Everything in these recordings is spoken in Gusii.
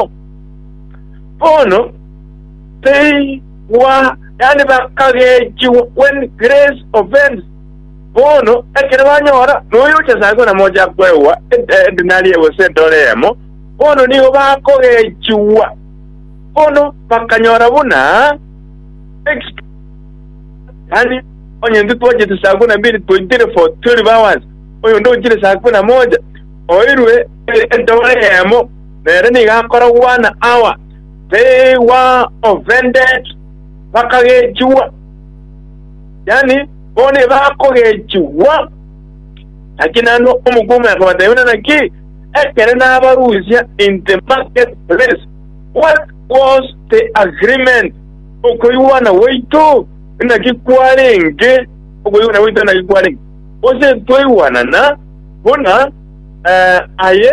Kristo. Bono teigwa, yaani bakagechigwa when grace offends. Bono ekero banyora noyo ochasare kona mocha kwegwa edinari gose edora eyemo, bono nigo bakogechigwa, bono bakanyora buna exp- yaani onye ntitwachete saa kumi na mbili twaitire for 12 hours oyo ndochire saa kumi na moja oirwe edora eyemo nere nigo akoragwa na awa they were offended, bakagechigwa, yaani bo nibakogechigwa. Naki naende omokungu akabatebia buna naki, Ekere nabarusia in the market place, what was the agreement? Okoigwana gwaito naki kwarenge, okoigwana gwaito naki kwarenge, gose twaigwanana buna eh, aye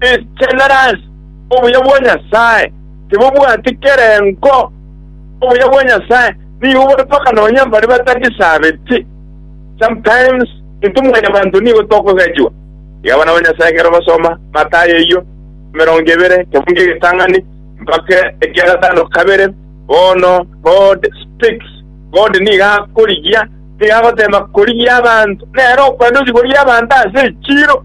Enchenera ase obuya bwa Nyasae, tibobwati kerengo. Obuya bwa Nyasae nigo bore mpaka nonya mbare batagisabeti. Sometimes intwe mwanyabanto nigo tokogechigwa. Iga abana ba Nyasae ekero basoma Mathayo eyio emerongo ebere kebunga egetang'ani mpaka ekia gatano kabere, bono God speaks, God nigo akorigia, nigo agoteema korigia abanto, nere okwenda ochi korigia abanto ase echiiro.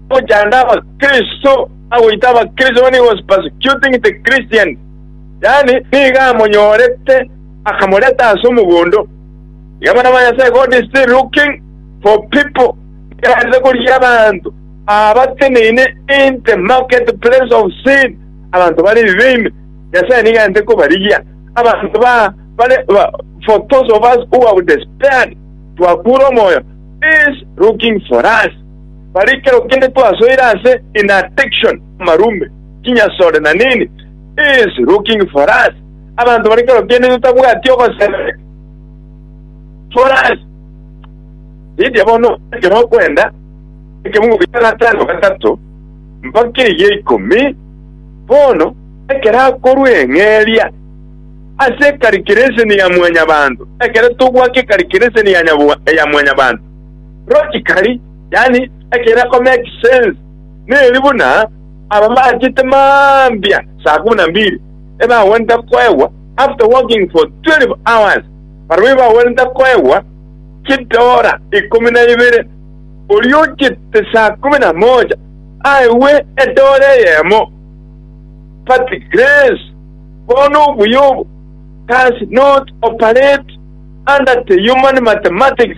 Ogochanda Abakristo, agoita Abakristo bane was persecuting the Christians, yaani nigo amonyorete akamoreta ase omogondo. Iga abana ba Nyasae, God is still looking for people erarete korigia abanto abateneine in the market place of sin, abanto bare ebibe ime. Nyasae nigo arente kobarigia abanto ba bare ba, for those of us who have despaired, twakure omoyo, is looking for us. Bare ekero kende twasoire ase in addiction marumbe, chinyasore na nini is looking for us. Abanto bare ekero kende totabwati ogosemeria for us. Ridia bono ekero okwenda ekemugo kia gatano gatato mpaka egia ikomi, bono ekero akorwa eng'eria ase ekarikireseni ya mwanyabanto, ekero togwaka ekarikireseni ya nyabwa- ya mwanyabanto, Logically, yaani ekerako makes sense, neri buna ababaachete mambia saa kumi na mbili ebagwenerete koegwa after working for 12 hours, barabwo ebagwenerete koegwa chidora ikomi na ibere, oria ochete saa kumi na moja aegwe edora eyemo. But grace, bono obuya obo, does not operate under the human mathematics.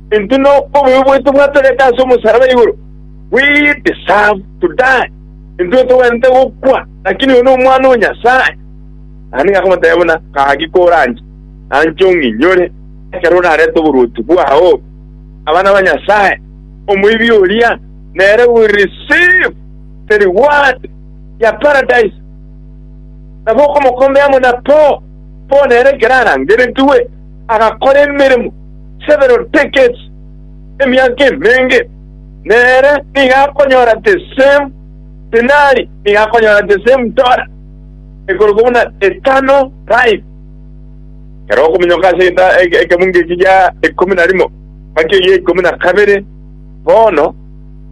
Intwe nobobe bwaito bwatoretwe ase omosaraba igoro, we deserve to die, intwe togwenerete gokwa, lakini oyo n'Omwana o Nyasae. Naende nigo akamotebia buna, Gaki koranche, nanche ong'inyore, ekero orarete oborwoti bwao obe abana ba Nyasae. Omoibi oria nere will receive the reward ya Paradise. Nabo okomokombea amo na Paul, Paul nere ekero arangeretigwe, agakora emeremo several decades, emiaka emenge, nere nigo akonyora the same denari, nigo akonyora the same dollar, ekorokwa buna eternal life. Ekero okominyoka ase eta- e- ekebungo eki gia ikomi na rimo mpaka egia ikomi na kabere, bono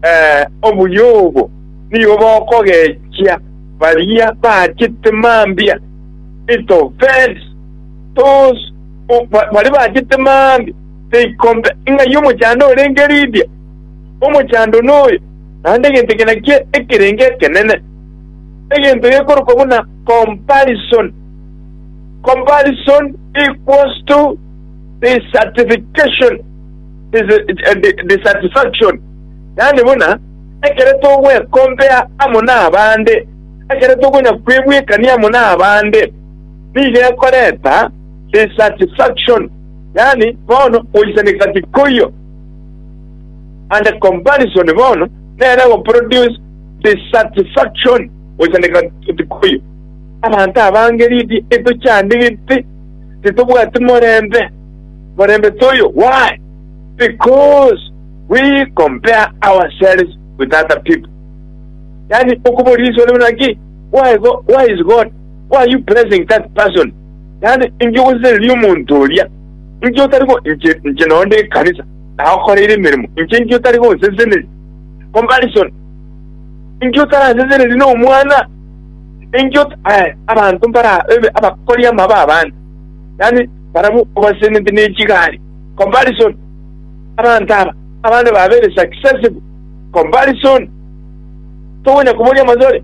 eh, obuya obo nigo bokogechia baria baachete mambia, it offends Tos, baria bachete maambia teikombe ing'ai omochando orenge Lidia? Omochando noyo, naende egento eke nakio ekerenge ekenene, egento gekorokwa buna comparison. Comparison equals to dissatisfaction, dissatisfaction, yaani buna ekero togwekompea amo nabande, ekero tokonya kwebwekania amo nabande. nigo ekorenta dissatisfaction, yaani bono goisaneka tikoiyo, and comparison bono nere egoproduce dissatisfaction, goisaneka tikoiyo. Abanto abange riri etochandigeti, titobwati morembe, morembe toiyo. Why? Because we compare ourselves with other people. Yaani okoboria riiswe rimo naki, why go, why is God Why are you praising that person? Yaani, inki ogosesenirie omonto oria? Inki otari go inche, inche noo ndi ekanisa, nagokoreire emeremo, inche inki otari gonseseneria? Comparison. Inki otarasesenerie na omwana? Inki ot eh, abanto mbara ebe abakori amabe abande. Yaani, barabwo obasesenete ne chigari. Comparison. Abanto aba, abande babere successful. Comparison. Togonya koboria amasore.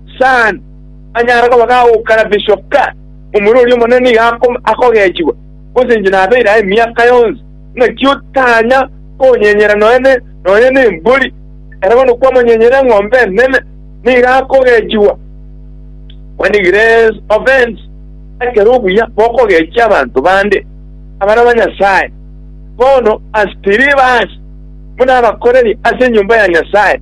Saan, anyare koba gagokara bishop ka omura oria omonene iga akogechigwa, gose inche nabeire aye emiaka yonsi. Naki otanya konyenyera noene nonya nembori, ere bono kwamonyenyera eng'ombe enene, nigo akogechigwa. When grace offends, ekero obuya bokogechia abanto bande, abana ba Nyasae, bono as believers, buna abakoreri ase enyomba ya Nyasae,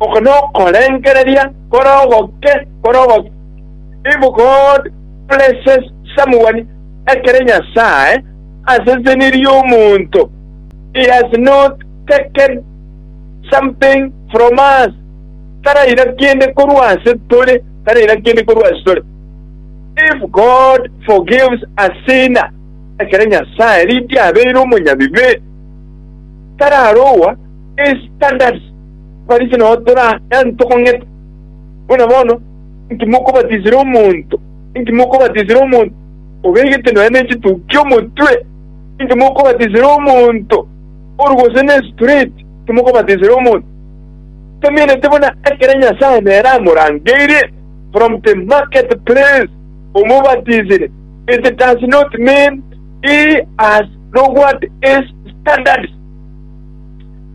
Oko nokorengereria kore ogoke, kore ogoke. If God blesses someone, ekere Nyasae asesenirie omonto, He has not taken something from us, taraira kende korwa ase tore, taraira kende korwa ase tore. If God forgives a sinner, ekere Nyasae rinde abeire omonyabibe, tararoa his standards. Abafarisi nao torayaanwe tokong'eta, buna bono inki mokobatisire omonto? Inki mokobatisire omonto obegete nonya nechitukia omotwe? Inki mokobatisire omonto oru gose nesutureti? Inki mokobatisire omonto otamenete buna ekero Nyasae nere amorangeirie? From the market place omobatisire, it does not mean he has lowered his standards.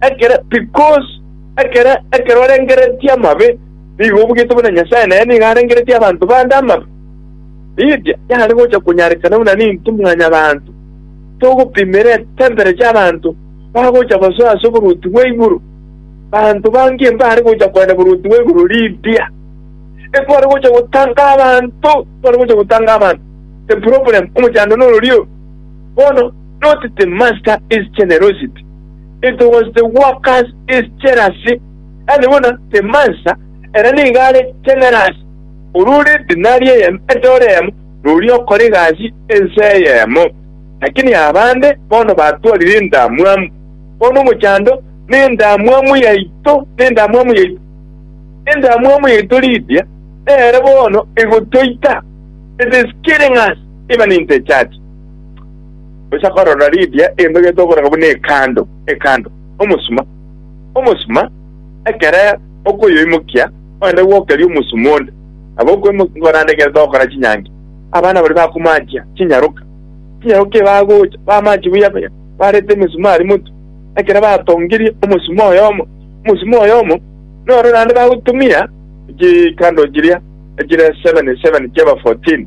Ekere, because ekere ekero arengereretie amabe, nigo obugete buna Nyasae naye nigo arengereretie abanto bande amabe. Lydia yare gocha konyarekana buna ninto mwanyabanto, togopimera etemperecha abanto bagocha basoa ase oboruoti bwa igoro. Banto bange mbare gocha koenda boruoti bwa igoro Lydia. Etware gocha gotanga abanto, tware gocha gotanga abanto. The problem, omochando nororio bono. Not the master is generosity, it was the workers is jealousy, yaani buna the mansa ere nigo are generous, oria ore edinari eyemo, edora eyemo, noria okora egasi ense eyemo. Lakini abande bono batwarire endamwamu, bono omochando nendamwamu yaito, nendamwamu yaito, endamwamu yaito Lydia nere bono egotoita, it is killing us even in the church. Gocha korora Lidia enogete okoraka buna ekando, ekando, omosuma, omosuma, ekere okoyoimokia oende gwokeria omosuma onde, nabo okoimokia korande egento ogokora chinyangi. Abana baria bakomanchia chinyaroka, chinyaroka ebi bagocha bamanchia buya buya, barete emisumari motwe, ekero batongirie omosuma oyomo, omosuma oyomo, noro naende bagotumia chikando chiria chire seven, seven chiaba fourteen.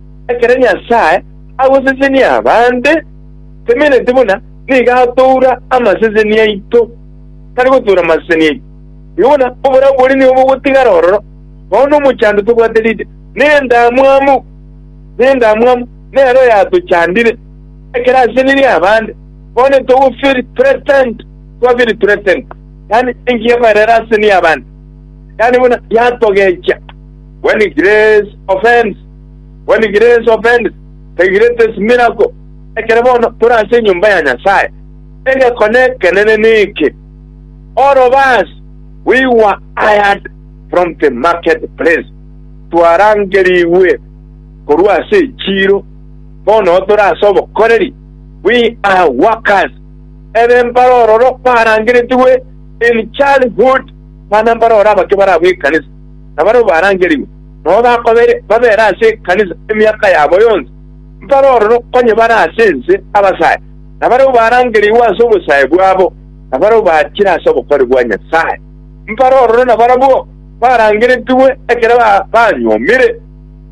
Ekero Nyasae agosesenia abaante, temeneti buna nigo atoura amaseseni aito, tari gotoura amaseseni aito. Erio bono oborabu boria nigo bogotigara ororo, bono omochando tobwate riria, na endamwamu nendamwamu nere oyatochandire. Ekero asesenirie abaante, bono titogofeel threatened, twafeel threatened, yaani enki yakoerera asesenie abaante, yaani buna yatogecha, when grace offends. When grace offends, the greatest miracle, ekere bono tore ase enyomba ya Nyasae, egekone ekenene neke, All of us, we were hired from the marketplace, twarangerigwe korwa ase echiiro, bono tore ase obokoreri, we are workers. Ebe mbarororo barangeretigwe in childhood, bana mbaroro abake barabwo ekanisa, nabarabwo barangerigwe. nabo bakobere babere ase ekanisa emiaka yabo yonsi, mbare ororo onye bare ase ense abasae, na barabwo barangereigwe ase obosae bwabo, na barabwo bachire ase obokori bwa Nyasae, mbare ororo nabarabwo barangeretigwe ekero banyuomire,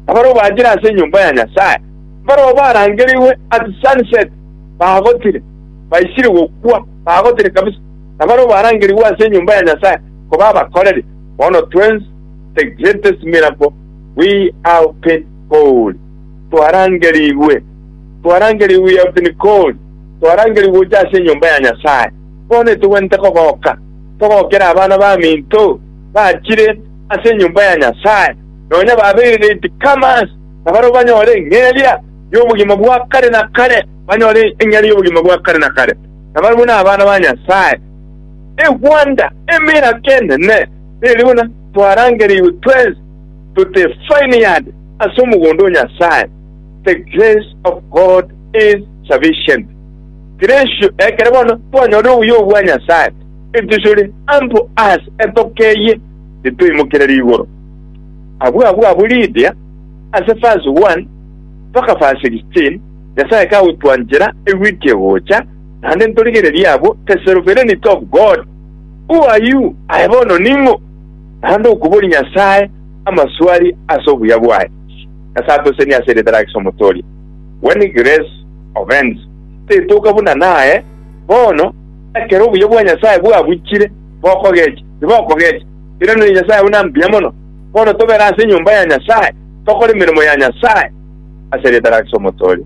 na barabwo bachire ase enyomba ya Nyasae, mbarabwo barangereigwe at sunset bagotire, baisire gokwa bagotire kabisa, na barabwo barangereigwe ase enyomba ya Nyasae koba abakoreri. Bono twensi. the greatest miracle we have been called, twarangerigwe, twarangerigwe we have been called, twarangerigwe gocha ase enyomba ya Nyasae. Bono etogwenerete kogoka, togokere abana baminto bachire ase enyomba ya Nyasae, nonya babeire late comers, na barabwo banyore eng'eria y'obogima bwa kare na kare, banyore eng'eria y'obogima bwa kare na kare, na barabwo nabana ba Nyasae. A wonder, emirako enene! Nere buna twarangereirwe twensi tote vineyard ase omogondo o Nyasae, The grace of God is sufficient. Gracio ekere bono twanyore obuya obwo bwa Nyasae, etuchore ample us etoke eye nitoimokerere igoro. Abwo abwo abwo Lydia ase verse 1 mpaka verse 16 Nyasae kagotwanchera eweek egocha, naende ntorigererie abwo the sovereignty of God, Oayio aye bono ning'o, naende okoboria Nyasae amaswali ase obuya bwaye? Nyasae atosenie ase eritara ake Omotoria. When grace offends, tetoka buna naye bono, ekero obuya bwa Nyasae bwabuchire, bokogecha? Tibokogecha. Erio nere Nyasae buna mbuya mono. Bono tobere ase enyomba ya Nyasae, tokore emeremo ya Nyasae ase eritara ake Omotoria.